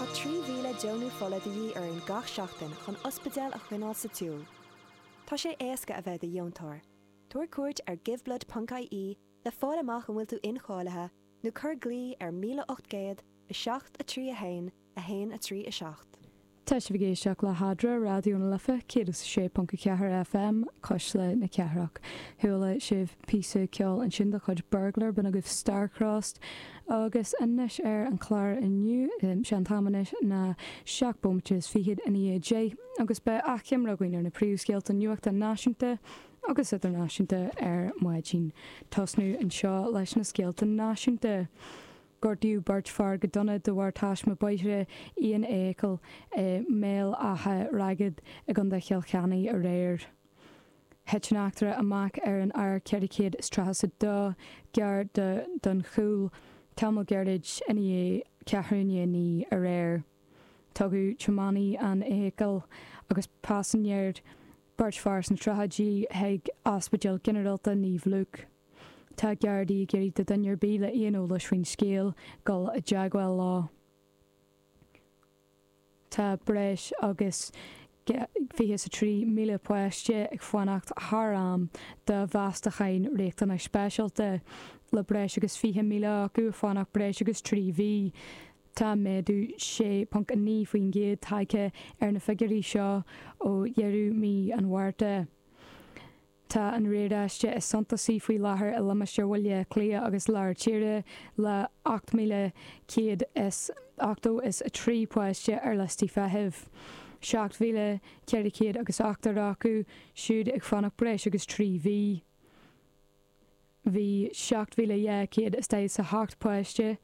Tá 3,000 deonú fola de dhíth orainn gach seachtain chun ospidéil a choinneáil sa tsiúl. Tá sé éasca a bheith i do dheontóir. Tabhair cuairt ar giveblood ponc IE le fáil amach an bhfuil tú incháilithe nó cuir glao ar 1807 3 1 1 3 7. Tá sibh ag éisteacht le hAdhmhaidin Raidió na Life 106.4 FM, Cuisle na Cathrach. Chuala sibh píosa ceoil ansin de chuid Burglar, b'in agaibh Starcrossed. Agus anois ar an chlár inniu, sé an t-am anois ná seacht bómaite is fichead ina dhiaidh a deich agus beidh achoimre againn ar na príomhscéalta nuachta náisiúnta agus idirnáisiúnta ar maidin. Ag tosnú anseo leis na scéalta náisiúnta. Gortaíodh beirt fear go dona de bharr taisme bóthair aon fheithicil i mBéal Átha Ragad i gContae Chill Chainnigh aréir. Thit an eachtra amach ar an R432 gar do Dhún Chúil tamall gairid ina dhiaidh ceathrú chun a naoi aréir. Tugadh tiománaí an fheithicil agus paisinéir, beirt fear sna tríochaidí, chuig Ospidéal Ginearálta Naomh Lúc. Tá Gardaí ag iarraidh de dhuine ar bith le haon eolas faoin scéal dul i dteagmháil leo. Tá breis agus 23,000 páiste ag fanacht thar am do mheastacháin riachtanas speisialta, le breis agus 20,000 acu ag fanacht breis agus trí mhí. Tá méadú 6.9% tagtha ar na figiúirí seo ó dheireadh mhí an Mhárta. Tá an riaráiste is suntasaí faoi láthair i limistéar Bhaile Átha Cliath agus Lár Tíre le 8,180 is 3 páiste ar liostaí feithimh, 7,400 agus ochtar acu siúd ag fanacht breis agus 3 mhí. Bhí 7,248 páiste.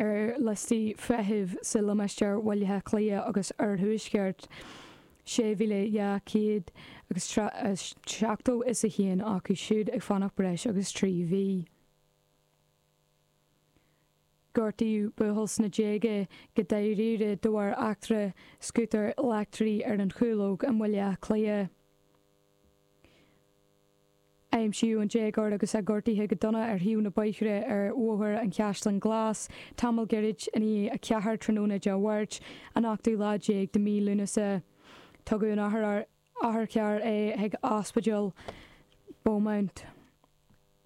ar liostaí feithimh sa limistéar Bhaile Átha Cliath agus Oirthuaisceart, 6,200 agus 70 is 1 acu siúd ag fanacht breis agus 3 mhí. Gortaíodh buachaill sna déaga go dáiríre de bharr eachtra scútair leictrigh ar an Chúlóg i mBaile Átha Cliath. Aimsíodh an déagóir agus é gortaithe go dona ar thaobh an bhóthair ar Bhóthar an Chaisleáin Ghlais tamall gairid ina dhiaidh 4 tráthnóna Dé Mháirt, an ochtú lá déag de mhí Lúnasa. Tugadh in otharcharr é chuig Ospidéal Beaumont.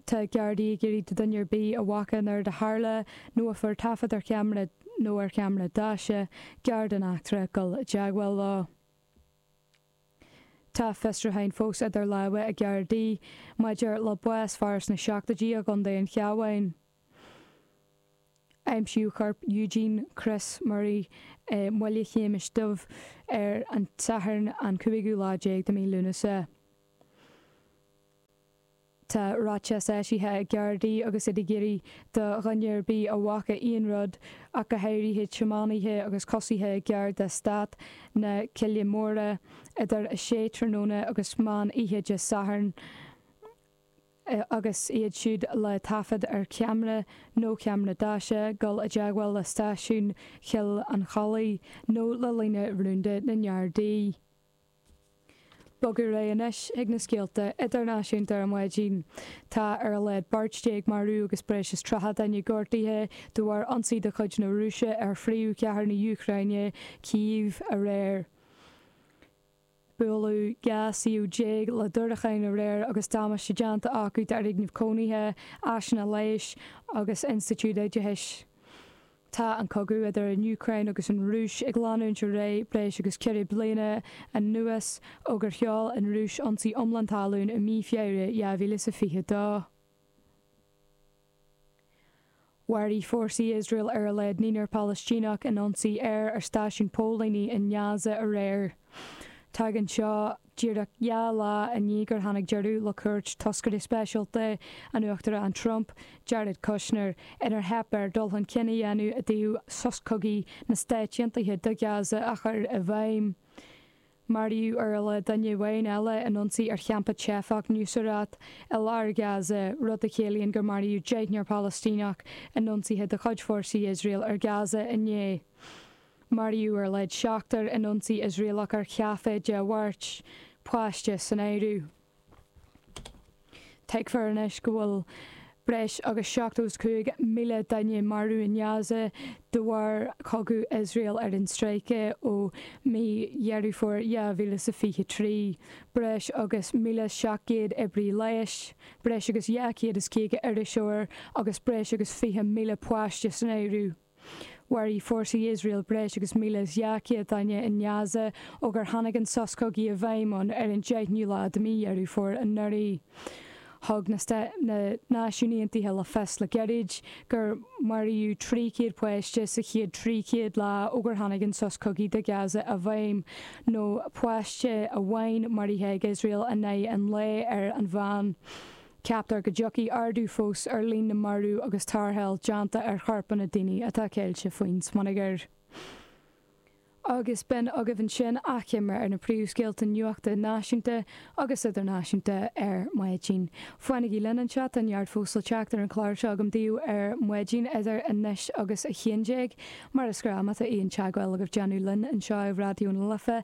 Tá Gardaí ag iarraidh de dhuine ar bith a bhfaca an rud a tharla, nó a fuair taifead ar cheamara nó ar cheamara daise giar den eachtra, dul i dteagmháil leo. Tá fiosrúcháin fós idir láimhe ag Gardaí maidir le bás fir sna seachtóidí i gContae an Chabháin. Aimsíodh corp Eugene Chris Murray i mBaile Shéamais Dhuibh ar an Satharn an cúigiú lá déag de mí Lúnasa. Tá ráiteas eisithe ag Gardaí agus iad ag iarraidh do dhuine ar bith a bhfaca aon rud, ach go háirithe tiománaithe agus coisithe i gceantar Eastát na Cille Móire, idir 6 tráthnóna agus meán oíche Dé Sathairn, agus iad siúd le taifead ar ceamara nó ceamara deaise, dul i dteagmháil le stáisiún Choill an Chollaigh nó le líne rúnda na nGardaí. Bogadh ar aghaidh anois ag na scéalta idirnáisiúnta ar maidin. Tá ar a laghad beirt déag marbh agus breis is tríocha duine gortaithe de bharr ionsaí de chuid na Rúise ar phríomhchathair na hÚcráine, Cív, aréir. Buaileadh dhá shuíomh déag le diúracáin aréir agus damáiste déanta acu d'fhoirgnimh cónaithe, áiseanna leighis agus institiúid oideachais. Tá an cogadh idir an Úcráin agus an Rúis ag leanúint ar aghaidh breis agus ceithre bliana anuas ó gur sheol an Rúis ionsaí iomlán talún i mí Feabhra 2022. Mharaigh fórsaí Iosrael ar a laghad naonúr Palaistíneach in ionsaí aeir ar stáisiún póilíní i nGaza aréir. Tagann seo Díreach dhá lá i ndiaidh gur tháinig deireadh le cuairt toscaire speisialta an Uachtaráin Trump, Jared Kushner, inar theip air dul chun cinn a dhéanamh i dtaobh sos cogaidh na Stáit Aontaithe do Ghaza a chur i bhfeidhm, maraíodh ar a laghad duine amháin eile in ionsaí ar champa teifeach Nuseirat i lár Ghaza, rud a chiallaíonn gur maraíodh deichniúr Palaistíneach in ionsaithe de chuid fórsaí Iosrael ar Ghaza inné. Maraíodh ar a laghad seachtar in ionsaí Iosraelach ar chaifé Dé Mháirt, páiste san áireamh. Tuigtear anois go bhfuil breis agus 75,000 duine marbh in Gaza de bharr chogadh Iosrael ar an stráice ó mí Dheireadh Fómhair 2023. Breis agus 1,700 oibrí leighis, breis agus 250 iriseoir agus breis agus 20,000 páiste san áireamh. Mharaigh fórsaí Iosrael breis agus 1,200 duine i nGaza ó gur tháinig an sos cogaidh i bhfeidhm ann ar an 10ú lá de mí Dheireadh Fómhair anuraidh. Thug na Náisiúin Aontaithe le fios le gairid gur maraíodh 300 páiste sa chéad 300 lá ó gur tháinig an sos cogaidh do Gaza i bhfeidhm, nó páiste amháin maraithe ag Iosrael in aghaidh an lae ar an mheán. Ceaptar go dtiocfaidh ardú fós ar líon na marú agus tarrtháil déanta ar chorpanna daoine atá ceilte faoin smionagar. Agus b'in agaibh ansin achoimre ar na príomhscéalta nuachta náisiúnta agus idirnáisiúnta ar maidin. Fanaigí linn anseo, tá neart fós le teacht ar an chlár seo agam daoibh ar maidin idir anois agus a haon déag. Mar is gnáth má tá aon teagmháil agaibh le déanamh linn anseo ar Raidió na Life,